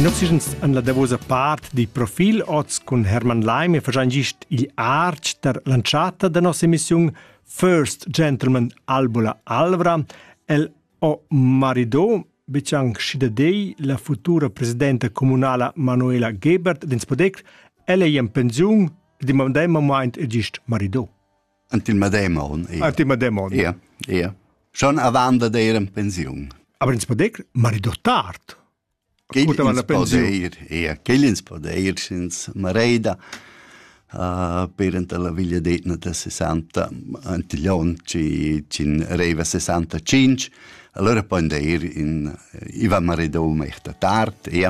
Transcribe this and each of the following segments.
In oxygens an la davosa part di profil oz cun Hermann Leim e fagein gist igl artg der l'antschatta da nossa emissiun First Gentleman Albula Alvra. El o marido biciang schi da dei la futura presidenta comunala Manuela Gebert d'ins podec, ella è in pensiun, di mamdem moment e gist marido. ant il medem on. Ant il medem on. Ia, ia. Schon avant da dir en pensiun. Aber ins podec marido tard. Ascoltava la pensiun. Ia, quel ins podeir sins mareida. Uh, per anta la villa d'Etna da 60 Antillon ci cin reiva 65 allora poi deir in Ivan Maridou mehta tard ia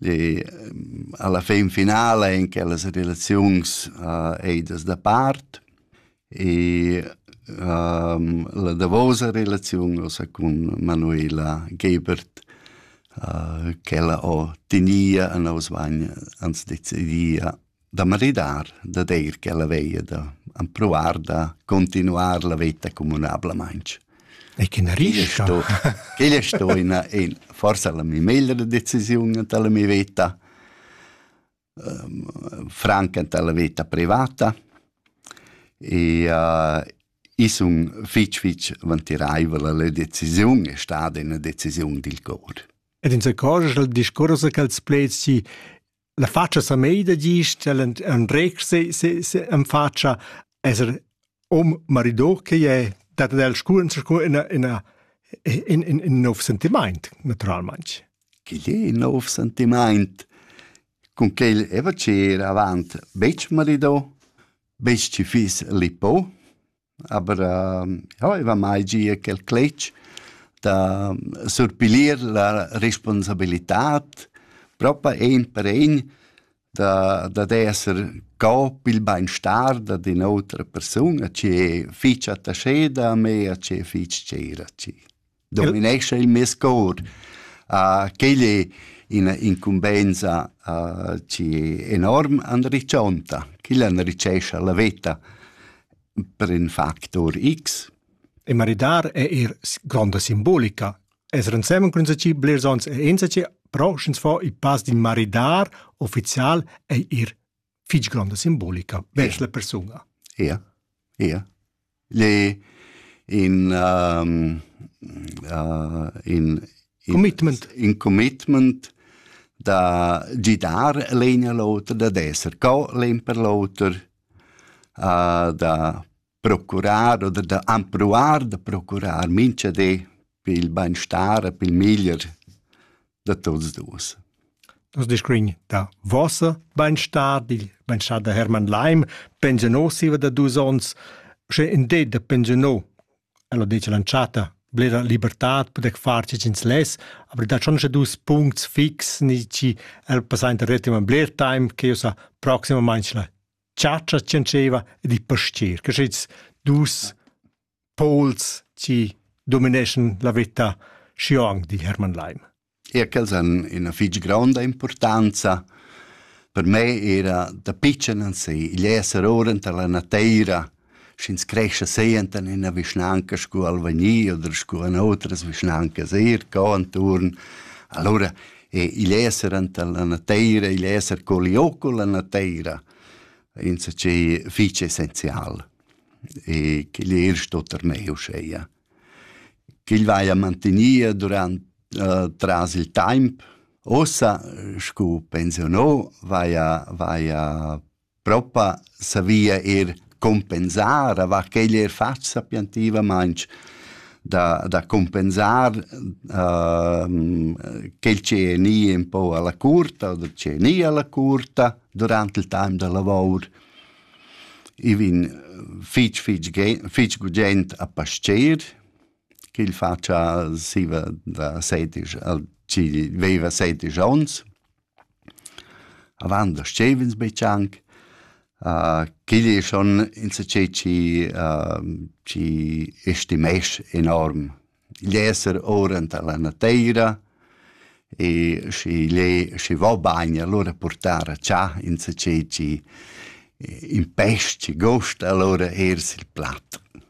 E alla fin finala in quellas relaziuns uh, ei das da part e um, la davosa relaziun ossa cun Manuela Gebert uh, che ella ho tinia a nos vagn ans decidia da maridar, da deir ch'ella veia da ampruar da continuar la veta communablamaintg. E che na rischa? Chegl è sto ina, in, forse la mia meglra decisiun anta la mia veta, um, franca anta la veta privata, e uh, is un fitch fitch vantiraivel la decisiun è stata una decisiun dil cor. Ed in se cor il discorso che els plezi la faccia sa meida gist, el andreg se, se, se en faccia esser om marido che è dat el scuren scu in in in in in nov sentiment naturalmente. Che è nov sentiment? Con che il eva c'era avant, bec marido, bec ci fis lipo, Aber äh, ja, i va mai gia quel cletg da surpilir la responsabilitad propa ein per ein da, da d'esser co pil beinstar da din outra persuna che fich attascheda a me a che fich tscheira ci. dominescha il mes cor. Uh, quel è ina incumbensa uh, enorm anriccionta, quel anricescha la veta per in factor X. E maridar è er gronda simbolica. Es rensemen cun ci blers ons e ensaci, però sch'ins fa il pass di maridar ufficial è er fich gronda simbolica vers la persuna. Ja, ja. Le in um, uh, in, in commitment in commitment da gidar l'egna l'oter da d'esser co l'en per l'oter uh, da procurar oder da empruar da procurar mincha di per il bainstar e per il meglier da tuots duos. Nos discurrin da vossa bainstar, dil bainstar da Hermann Leim, pensionò siva da dus ons, sche in det da pensionò, ella dice l'anchata, blera libertad podec far ci ins les, aber da schon dus puncts fix ni ci el passainta retima bler time che usa proxima mainschla chatscha tschentscheva ed i pastier, che schits dus pols ci domineschan la vita xiong di Hermann Leim. E quels han ina fitg gronda importanza per me era da pitschen ansi, igl esser ora tar la nateira sch'ins crescha senten in ina vischnanca sco Albania oder sco in otras vischnancas eir ca inturn. Allora e igl esser enta la nateira, igl esser co liò con la nateira, insacché fich essenzial. E ch'igl er sto termeu uscheia. Ch'igl vaia mantinia durant uh, tras il temp. Ossa, scu pensionò, vaia, vaia Propa savia eir cumpensar avant ch'el eir fat sapientivamaing da da cumpensar quel chi è gnì ün po a la curta o chi è gnì a la curta durant il taim da lavour. I vin fich fich fich gugent a pascher ch'el fatscha siva da sedisch al chi veiva sedisch ons. Avant da stev'ins betg anc. Quigl è schon insatgè chi chi estimess enorm l'esser ora enta la nateira e schi igl è schi va bagn alura purtar a chà insatgè chi impest, chi gosta alura eir sil plat.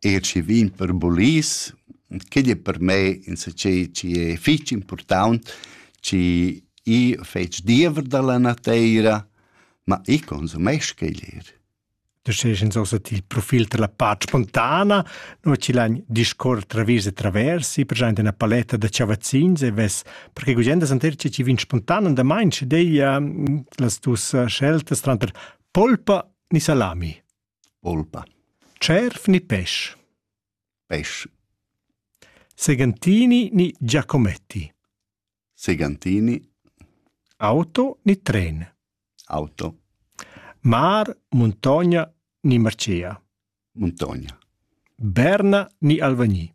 E schi vin per bulis, quei ei per me insatgei chi è fich important, chi io fetsch diever dalla nateira, ma io consumesch quei lir. Tu sches ins ossa il profil della pace spontana, no ci l'agn discorre travis e travers, i present una paletta da ciavazzins e ves, perché gugenda santer ci ci vin spontan und da mein ci dei uh, las tus uh, sceltas tranter polpa ni salami. Olpa. Cerf ni pesch? Pesch. Segantini ni Giacometti? Segantini. Auto ni tren? Auto. Mar, muntogna ni marcea? Muntogna. Berna ni Alvagni?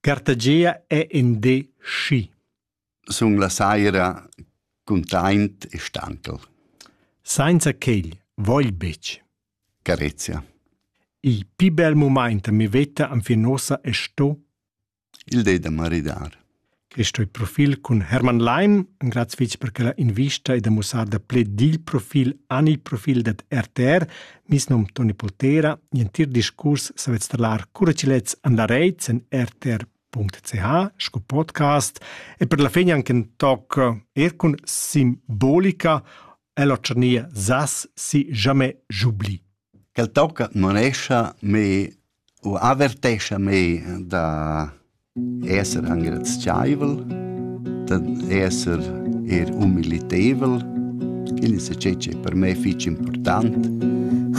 Cartagia è in di schi. Sun la saira cuntaint e stanchel. Sainza quel vogl betg. Carezia. Il pi bel moment mi veta anfin ossa è sto. Il de da maridar. Questo è profil cun Hermann Leim, un grazie per quella invista e da mussar da ple dil profil an il profil dat RTR, Mis num Toni Poltera, entir discurs savet strlar cura chi lets andareits in rtr.ch sco podcast e per la fin anche in toc er cun simbolica e la tscharnia sas si jamais j'oublie. Quel toc manescha me u avertescha mei da esser engrazievel, da esser er humiliteivel, quindi se c'è per me fich important.